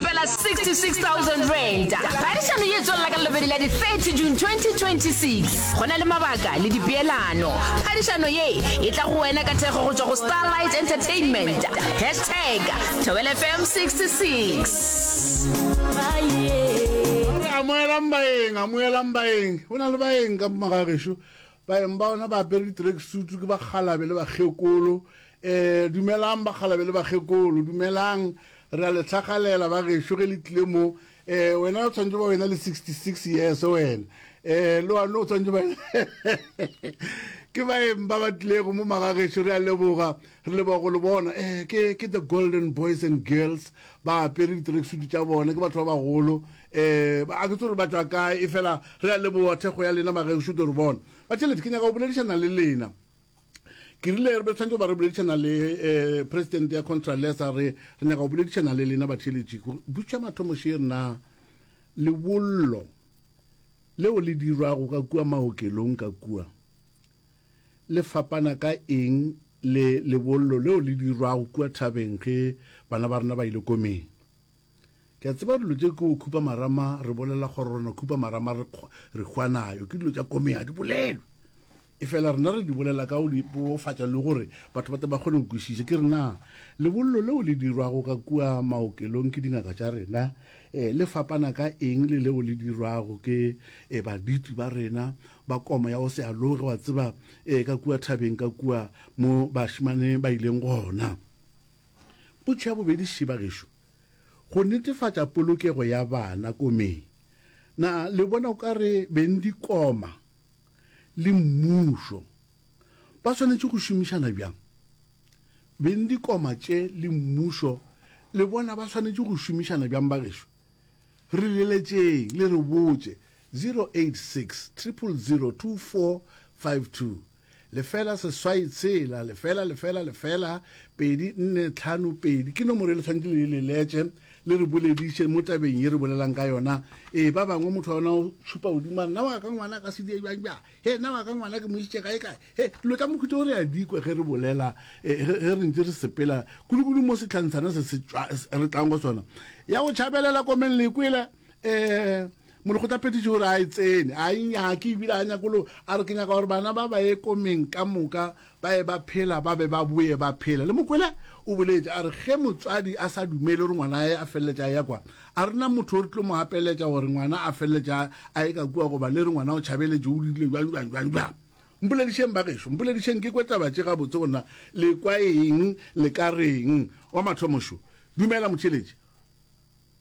Fela R66,000. Phadišano ye e tswelela ka Labobedi la di 30 June 2026. Go na le mabaka le dipeelano. Phadišano ye e tla go wena ka thekgo go tšwa go Starlight Entertainment. Hashtag Thobela FM 66. Amogelang baeng, amogelang baeng. Go na le baeng ka mo magagešu. Baeng ba ona ba apere di-tracksuit, ke bakgalabe le bakgekolo. Ee, dumelang, bakgalabe le bakgekolo, dumelang. Re a le hlagalela, bagešo, ge le tlile mo. Ee, wena o tshwanetse ba wena le sixty-six years, wena. Ee, le wane o tshwanetse ba Ke baeng ba ba tlilego mo, magagešo, re a leboga. Re leboga go le bona. Ee, ke, ke the Golden Boys and Girls, ba apere di-tracksuit tša bona, ke batho ba bagolo. Ee, a ke tsebe gore ba tšwa kae, efela re a leboga thekgo ya lena bagešo. Ke re bona, Batšhelete, ke nyaka go boledišana le lena. Ke rile re be re tshwanetse go ba re boledišana le um Presidente ya Contralesa, re re nyaka go boledišana le lena Batšhelete, gore butša mathomo še re na lebollo leo le dirwago ka kua maokelong ka kua le fapana ka eng le lebollo leo le dirwago kua thabeng ge bana ba rena ba ile komeng. Ke a tseba dilo tše ke go khupa marama re bolela kgororano khupa marama re re hwanayo ke dilo tša kome ha di bolelwe e fela rena re di bolela ka go di bolofatša le gore batho ba te ba kgone go kwešiša ke rena lebollo leo le dirwago ka kua maokelong ke dingaka tša rena um le fapana ka eng le leo le dirwago ke um baditi ba rena ba koma ya go se aloge wa tseba um ka kua thabeng ka kua mo bašimane ba ileng gona Potšo ya bobedi, Šiba gešo, go netefatša polokego ya bana komeng, na le bona o ka re beng dikoma le mmušo ba swanetše go šomišana bjang? Beng dikoma tše le mmušo le bona ba swanetše go šomišana bjang bagešo? Re leletšeng le re botše 086 000 2452. lefela seswai tshela lefela lefela lefela pedi nne tlhano pedi ke nomoro e le tshwanetse le le letse le re bolediše mo tabeng ye re bolelang ka yona ee ba bangwe motho wa yona o šupa godimo nna wa ka ngwana ka sedie jang jang he nna wa ka ngwana ke mošitše kae kae he dilo tša mokhutso o re a dikwe ge re bolela e, ge re ntse re sepela kulukulu mo setlhantshana se re tlang go sona ya go tšhabelela komeng lekwela um molekgotlaphethiši gore a e tsene a e nyake ebile a nyakolo a re ke nyaka gore bana ba ba ye komeng ka moka ba ye ba phela ba be ba boye ba phela le mokwele o boletse a re ge motswadi a sa dumele gore ngwana ae a feleletša a ya kwa a rena motho o re tlo mo apeletša gore ngwana a feleletša a ye ka kua goba le re ngwana o tšhabeletše o dirile jwang jwang jwang jwang mpoledišeng bagešo mpoledišeng ke kwetaba tše gabotse go nna le kwa eng le ka reng wa mathomošo dumela motšheletše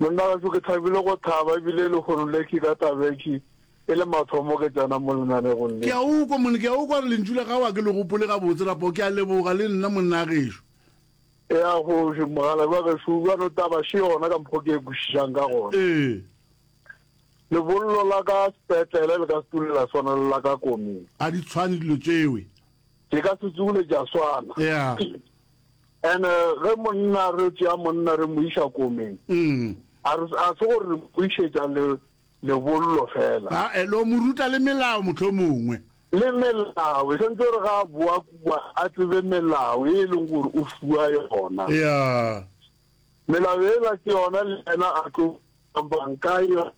Monna gaso ke thabile go thaba ebile e le hono leki ka tabeki e le mathomo ke tsena mo lenanegong le. Ke a ukwa monna, ke a ukwa gore lentšu la gago a ke le gopole gabotse rapoo, ke a leboga le nna monna gešo. Ea kgoši, mogalabi wa gešoo, bjalo taba še yona ka mokgo ke e kwešišang ka gona. Ee. Lebollo la ka sepetlele le ka se tule la swana le la ka komeng. A di tshwane dilo tšewe. Ke ka se tule tša swana. Ea. And-e ge monna re tšea monna re mo iša komeng, a re, a se gore re mo išetša le, lebollo fela. Ae, lo mo ruta le melao mohlomongwe. Le melao, sentse gore ga a boa kua a tsebe melao e e leng gore o fiwa yona. Yeah. Melao ela ke yona le yena a tlo, bang ka yona.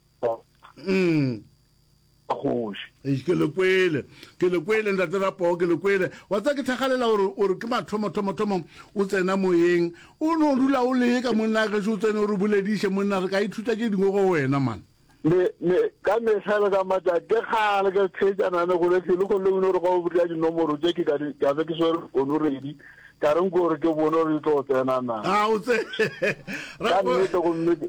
kgoši. Eish, ke le kwele, ke le kwele, Ntate Rapoo, ke le kwele. Wa tseba, ke thakgalela gore, o re ke mathomo, thomo, thomo, o tsena moyeng. O no dula o le ye ka monna gešo, o tsene o re bolediše, monna, re ka ithuta tše dingwe go wena, man. Me, me, ka mehla le ka matšatši, ke kgale ke theetšana le go le hlwele, go le o no re ga o botša dinomoro tše, ke ka di, ka be ke swere fonoredi, ka re nko gore ke bone gore di tlo tsena na. Ga o tse, Ka Rapoo. nnete gomme ke.